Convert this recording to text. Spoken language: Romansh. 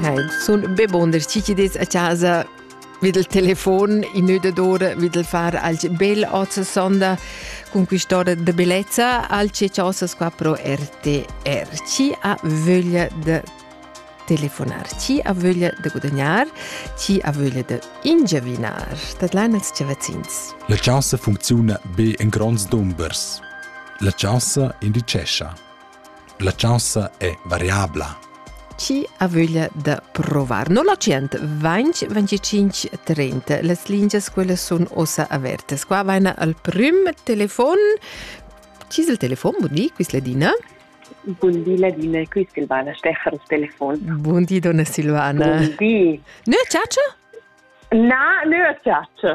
Nein, sun be bunder chi chi des a casa vid il telefon in d'ora vid il far al bel oz sonda con quest'ora de bellezza al che ciosas qua pro RTR ci ha voglia de telefonar, ci ha voglia de guadagnar, ci ha voglia de ingiavinar. Dat l'annex ce vecins. La chasa funcziona be in grands dumbers. La chasa indicescha La chaussa è variabla. Chi ha vöglia da provar? 0100 20 25 30. Las lingias quelle sono ossa averte. Qua vaina al prim telefon. Chi es il telefon? Bun di, quis Ladina. Bun di Ladina, quis il bana stecher il telefon. Bun di donna Silvana. Bun di. Nö ciaccia? Na, nö ciaccia.